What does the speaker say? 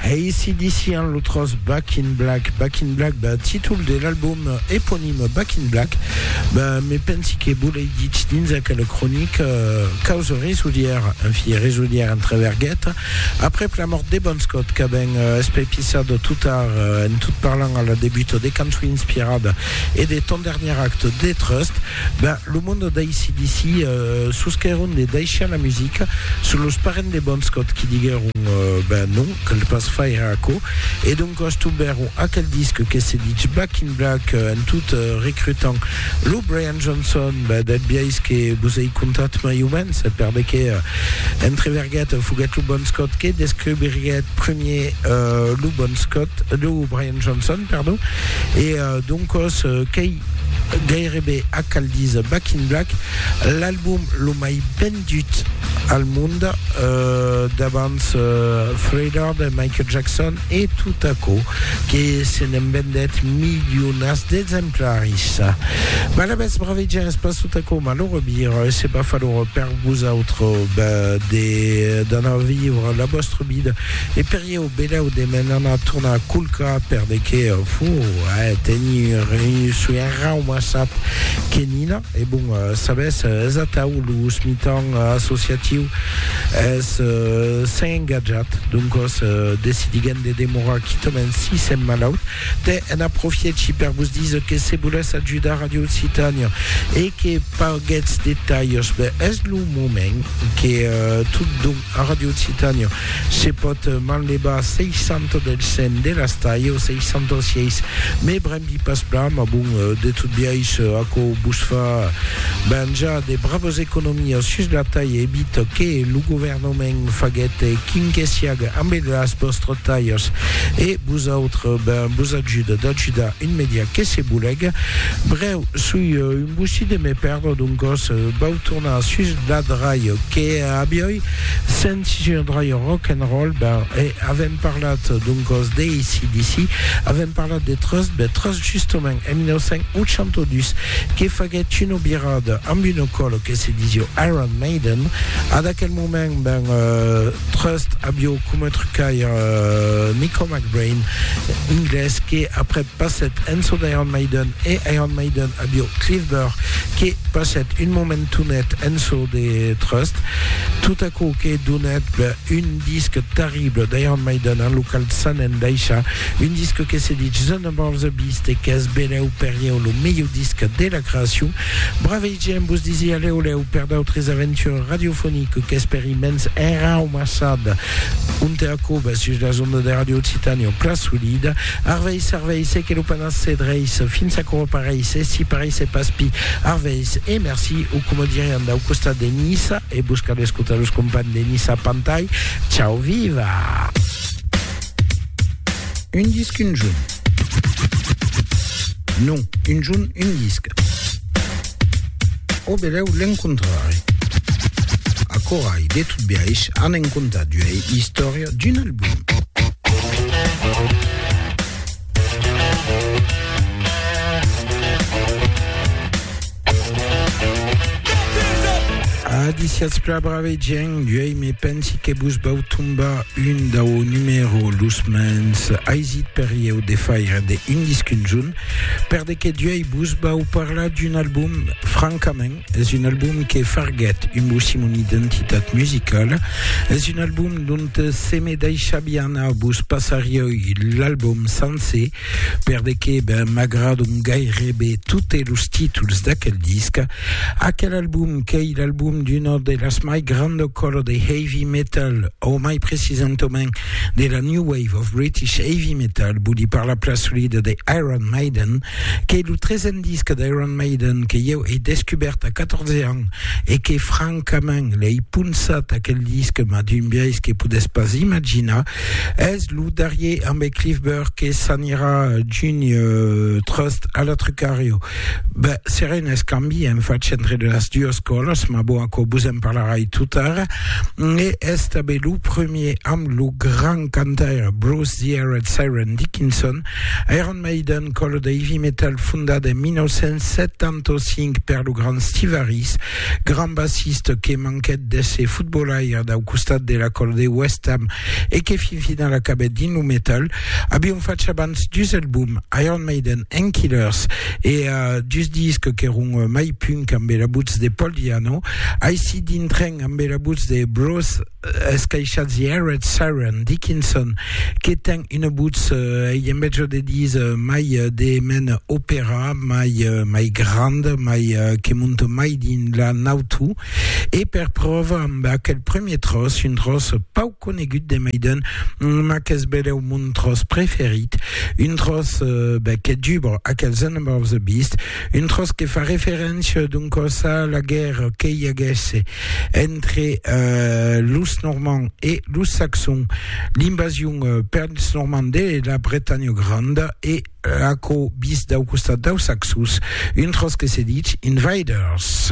ACDC an lo tros Back in Black. Back in Black, ben, títol de l'album eponime Back in Black. Ben, me pensi que volei dit dins aquela cronica euh, causa resudier, en fi, resudier entre verguet. Après la mort de Bon Scott, que ben euh, espepisado tout tard, euh, en tout parlant à la début de cançons inspirada et de ton dernier acte de Trust, Ben, lo monde d'ACDC sosquèron de daishar la musica, son los parents de Bon Scott qui diguèron ben non, cal pas faire aquò, e doncas tombèron aquel disc que se ditz Back in Black en tot recrutant lo Brian Johnson, ben del biais que vos ei contat mai o mens, per de qué entreverguèt foguèt lo Bon Scott que descobriguèt premier lo Bon Scott, lo Brian Johnson, pardon, e doncas qu'ei Gairebe a cal díser Back in Black, l'album lo mai vendut al mond, davant Thriller de Michael Jackson e tot aquò que se n'en vendèt milionats d'exemplaris. Mas la mès braveja es pas tot aquò, mal o rebir, se pas fa lor per vosautres, ben, d'anar vivre la vòstra vida e per Ieu belèu de m'en anar tornar culcar per de qué fo a tenir un soi enraumassat que Nina e bon sabes es atau lo mitan associatiu es s'en engatjat doncos decidiguem de demorar quitament si sem malaut te en aprofièchi per vos diser que se volètz ajudar Radio Occitània e que paguètz de talhs ben es lo moment que tot don A Ràdio Occitània se pòt manlevar 60 del 100 de las talhas, 66, me brembi pas plan, mas bon, de tot biais, aquò vos fa venjar de bravas economias sus la talha, evit que lo governament faguèt quin que siaga ambe las vòstras talhas e vosautres, ben, vos ajuda d'ajudar un media que se bolega. Brèu, soi un bossí de me perdre, doncas vau tornar sus Dad Raio que avioi sentit un raio rock and roll ben e avèm parlat doncòs de ACDC avèm parlat de Trust ben Trust justament en 1982 que faguèt una virada amb una còlo que se disió Iron Maiden ad aquel moment ben Trust avió coma trucaire Nico McBrain inglés que après passèt en çò d'Iron Maiden e Iron Maiden avió Cliff Burr que passèt un moment Tonet en çò de trust, tot aquò que donèt un disc terrible d'Iron Maiden en lo qual s'an endaishat, un disc que se ditz The Number of the Beast e qu'es belèu per ieu lo melhor disc de la creacion. Bravei gent, vos disi a lèu lèu per d'autres aventures radiofoniques qu'espèri mens enraumassat ont e a còbas sus las ondas de Radio Occitània o Pla Solid. Arvèis, arvèis e que lo Pairal Se dreis fins aquò o pareis, e si pareis e pas pi arveis e merci o coma dirián dau costat de Niça e vos cal escotar los companhs de Niça Pantai Chau viva. Un disc un junh. Non, un junh un disc. O belèu l'encontrari. Acorai, de tot biais, anem contar d'uei istòria d'un album. Adiciats pla brave gent, uei me pensi que vos vau tombar un dau numero los mens aisit per ieu de faire de un disc unzun, per de que uei vos vau parlar d'un album francament Es un album que farguèt un bossimon identitat musicala, es un album dont se me daishabia anar, vos passarioi l'album sancer per de que ben m'agradon gairebe totes los títols d'aquel disc. Aquel album qu'ei l'album d'una de las mai granda cola de heavy metal, o mai precisentament de la new wave of British heavy metal, voli parlar plan solida de Iron Maiden, Qu'ei lo tresen disc d'Iron Maiden que ieu ei descubèrt a 14 ans e que francament l'ei ponçat aquel disc mas d'un biais que podètz pas imaginar. Es lo darrier ambe Cliff Burr que s'anirà junh tròst a la Trucario. Ben, serà un escambi en fach entre de las duas còlas, mas bon aquò vos en parlarai totara. E es tanben lo premier amb lo grand cantaire Bruce The Aerad Siren Dickinson. Iron Iron Maiden, còlo de heavy metal fondat en 1975 per lo grand Steve Harris, grand bassiste que manquèt d'èsser fotbolaire dau costat de la còlo de West Ham e que fin final acabèt dins lo metal, avián fach abans dus albums, Iron Maiden and Killers, e dus discs qu'èron mai punk ambe la votz de Paul Di'Anno. Aicí dintrèn ambe la votz de Bruce. escaishats Jared, Sharon, Dickinson, que ten una votz, ei en mètge de dis, mai de mena opèra, mai mai granda, mai que monta mai dins la nautu, e per pròva amb aquel premier tròç, un tròç pauc conegut de mai d'un, ma qu'es belèu mon tròç preferit, un tròç ben que dubra aquels Anabaughs Beasts, Un tròç que fa referéncia, doncòs, a la guèrra que i aguèsse entre los Normands e los Saxons, l'invasion pels Normands de la Bretanha Granda e aquò vist dau costat daus Saxons, un tròç que se ditz Invaders.